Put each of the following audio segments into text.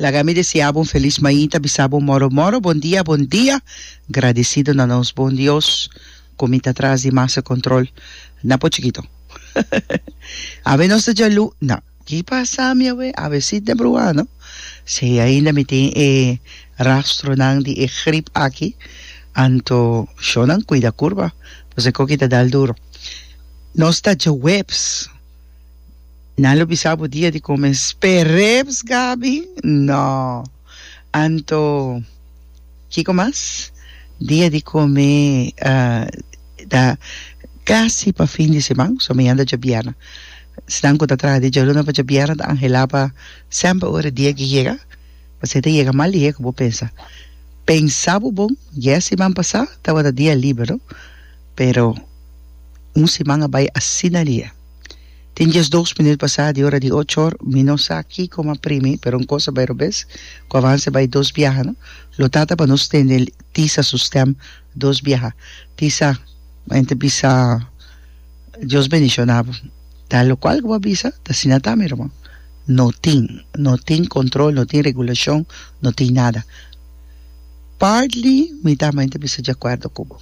Laga mi deseá bo un felis mainta, bisa bo moro moro, bon dia, bon dia, gradesido na nos bon Dios ku mi ta tras di masa kontrol na bo chikito. Awe nos ta djalú, na, ki pasa mi awe? Awe si ta bruhá, no? Si ainda mi tin e rastronan di e grip aki, anto shónan kuida kurba, pasobra e koki ta dal duro. Nos ta djaweps. Nan lo bisa bo dia di come spereps Gaby? No. Anto kico mas? Dia di come ta casi pa fin di seman, so mi anda djabiera. Esnan cu ta traha di djaluna pa djabiera ta angela pa semper ora dia ki yega, pasobra e ta yega mas lihe cu bo pensa. Pensa bo bon, dies siman pasa tabata dia liber, no? Pero un siman a bai asina dia. Tin dies dos minut pasá di ora di ocho or, mi no sa kiko m'a pri mi, pero un kos a bai robes, ku avanse bai dos biaha, no lo ta ta pa nos tende el tisa su stèm dos biaha. Tisa, mi enta bisa, Dios bendishona bo. Ta lokual ku bo a bisa, ta asina ta mi ruman. No tin, no tin kontrol, no tin regulashon, no tin nada. Partly mi ta, mi enta bisa di akuerdo ku bo.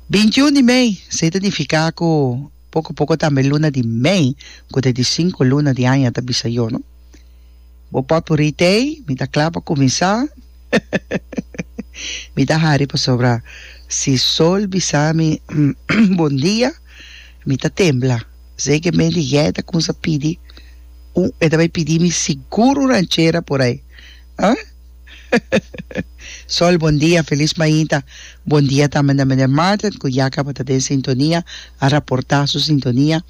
Bintiún di mei, sey ta nifiká ku poko poko tambe luna di mei ku ta di sinku luna di aña ta bisa yo, no? Bo potpurrí tei, mi ta kla pa kuminsá. Mi ta hari pasobra si sol bisa mi bondia, mi ta tembla. Sey ke mei di gei ta kumsa pidi un, e ta bai pidi mi sigur un ranchera por ai. Huh? Sol bon dia, felis mainta. Bon dia tambe na Meneer Martin cu ya caba ta den sintonia, a raporta su sintonia.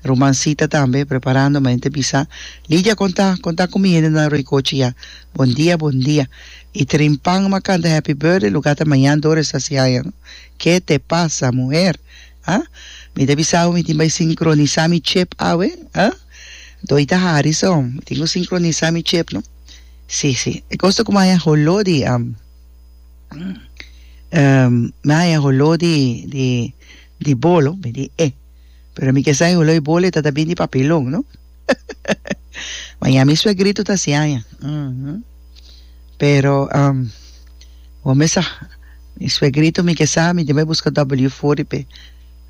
Ruman Sita tambe preparando mainta bisa, Lydia con ta? Con ta cu mi hendenan Roycoche ya? Bon dia, bon dia. Y Trin Pang ma canta Happy Birthday lugar ta mañan Doris ta siaña no. Ke te pasa muher? Huh? Mi ta bisa awe mi tin bay sincronisa mi chip awe? Huh? Doita hari so, mi tin cu sincronisa mi chip no. Sí, sí. E cos ta cu mi a haya holó di, mi a haya holó di, di, di bolo, mi di e. Pero mi kesa e holó di bolo e ta ta bin di papelon, no? Ma ya mi suegrito ta así aña. Ujú. Pero, bo mesa, mi suegrito mi kesa mi debe busca W forty pe.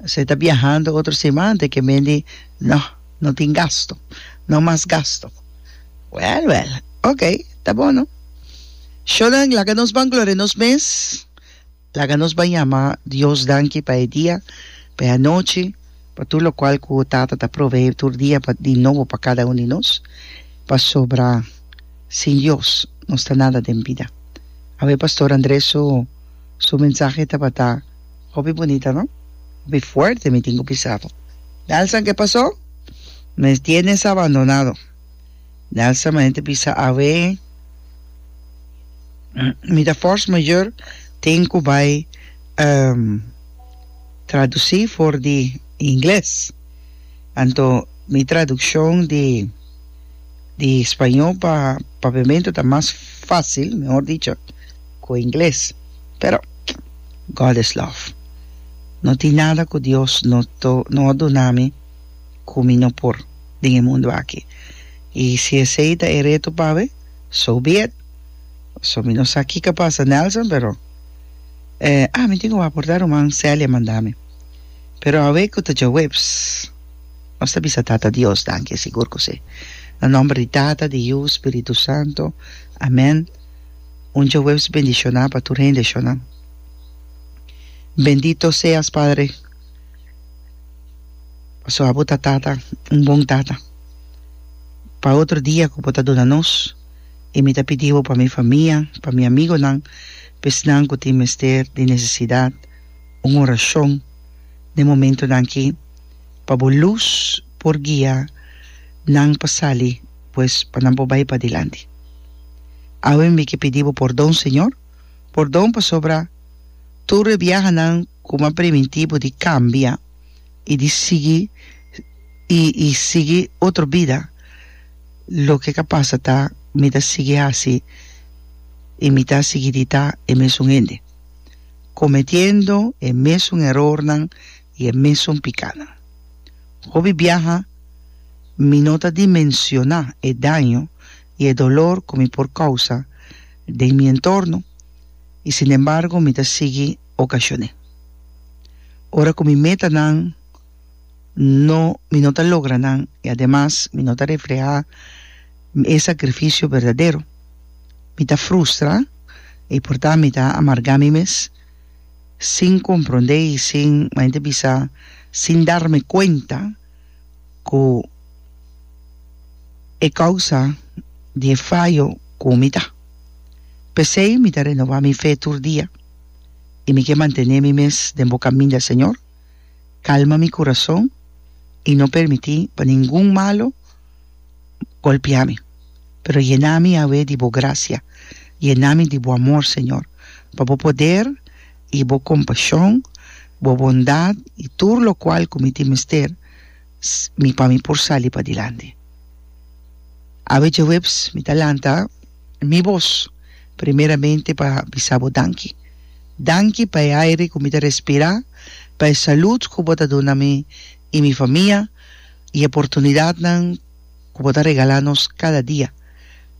Así ta biahando otro siman te ke men di, no, no tin gasto, no mas gasto. Well, well. Ok, ta bon no. Sho den, laga nos ban gloria nos mes, laga nos ban yama Dios danki pa e dia, pa e anochi, pa tur locual cu Tata ta provee tur dia pa di nobo pa cada un di nos, pasobra sin Dios nos ta nada den bida. Awe Pastor Andres su su mensahe tabata. Hopi bunita no? Hopi fuerte mi tin cu pisabo. Nelson ke paso? Mes tienes abandonado. Nelson manente bisa awe mi ta force mayor tin cu bay um, traduci for di ingles. Anto mi traduccion di di spaño pa Pavimento ta mas facil, mehor dicho, Ku ingles, pero God is love. No tin nada ku Dios no no a duna mi ku mi no por den e mundu aki. I si esei ta e reto pawe, so be it. So mi no sa kiko pasa Nelson, pero eh ah mi tin ku waporta ruman Celia manda mi. Pero awe ku ta djawip, pss, nos ta bisa Tata Dios danki, sigur ku si. Na nomber di Tata, di Yu, Spiritu Santo. Amen. Un djahuebs bendishoná pa tur hende shona. Bendito seas padre pasobra bo ta tata un bon tata pa otro dia ku bo ta duna nos i mi ta pidi bo pa mi famia pa mi amigonan pa esnan ku tin mester di nesesidat un orashon den momentunan aki pa bo lus por guia nan pa sali pues pa nan por bai padilanti. Awe mi ke pidi bo pordon, Señor, pordon pasobra tur e biahanan ku mi a primintí bo di kambia i di sigui i i sigui otro bida, loke ka pasa ta mi ta sigui hasi i mi ta sigui di ta e mesun hende, kometiendo e mesun erornan. i e mesun pikanan. Hopi biaha mi no ta dimensioná e daño i e dolor ku mi por kousa den mi entorno, i sinembargo mi ta sigui okashon'é. Ora ku mi metanan no mi no ta logra nan i ademas mi no ta reflehá e sakrifisio berdadero, mi ta frustra i portá mi ta amargá mi mes. sin comprende y sin, como ente bisa, sin darme cuenta cu e causa di e fallo cu mi ta. Pesey mi ta renova mi fe tur dia y mi ke mantene mi mes den bo caminda, Señor. Calma mi corazon y no permiti pa ningun malo. golpia mi, pero yena mi, Yahweh, di bo gracia, yena mi di bo amor, Señor, pa bo poder i bo compashon, bo bondad i tur locual cu mi tin mester mi pa mi por sali padilanti. Awe djehuebs mi ta lanta mi bos primeramente pa bisa bo danki. Danki pa e aire cu mi ta respira, pa e salud cu bo ta duna mi, i mi famia i oportunidatnan ku bo ta regalá nos kada dia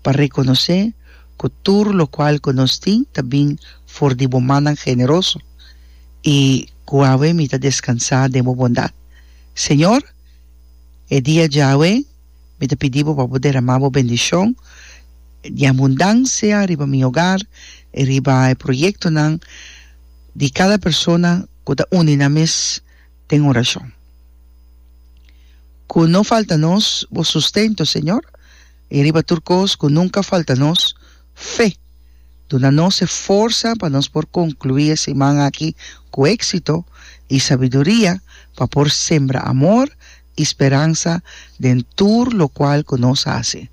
pa rekonosé ku tur lokual ku nos tin ta bin for di bo mannan generoso i ku awe mi ta deskansá den bo bondat. Señor, e dia djawe mi ta pidi bo pa bo deramá bo bendishon di abundansia riba mi hogar i riba e proyektonan di kada persona ku ta uni nan mes den orashon. Ku no falta nos Bo sustento, Señor, i riba tur kos ku nunka falta nos fe. Duna nos e forsa pa nos por konkluí e siman aki ku éksito i sabiduria pa por sembra amor i speransa den tur lokual ku nos hasi.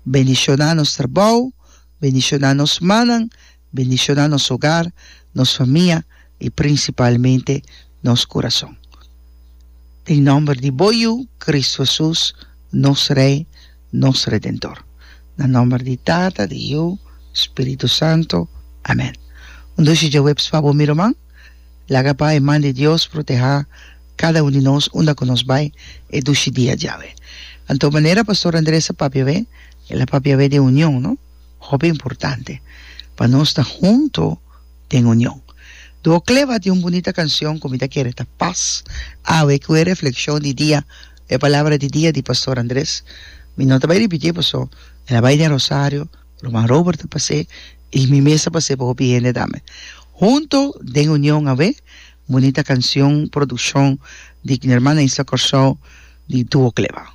Bendishoná nos trabou, bendishoná nos mannan, Bendiciona nos hogar, nos famia y principalmente nos corazon. Den nomber di Bo Yu, Cristo Jesus, nos Rey, nos Redentor. Na nomber di Tata, di Yu, Spirito Santo. Amen. Un doshi djaweps pa bo mi ruman. Laga pa e man di Dios proteha cada un di nos unda cu nos bay e dushi dia djawe. Anto manera Pastor Andres a papia awe, el a papia awe den union, no? Hopi importante pa nos ta hunto den union. Duo Cleva tin un bunita cancion cu mi ta kere ta pas awe cu e reflexion di dia, e palabra di dia di Pastor Andres. Mi no ta bay ripitié paso el a bay den Rosario, Ruman Robert a pas'é y mi mes a pas'é pa hopi hende tambe. Hunto den union awe, bunita cancion produccion di Hermana Isla Corsou di Duo Cleva.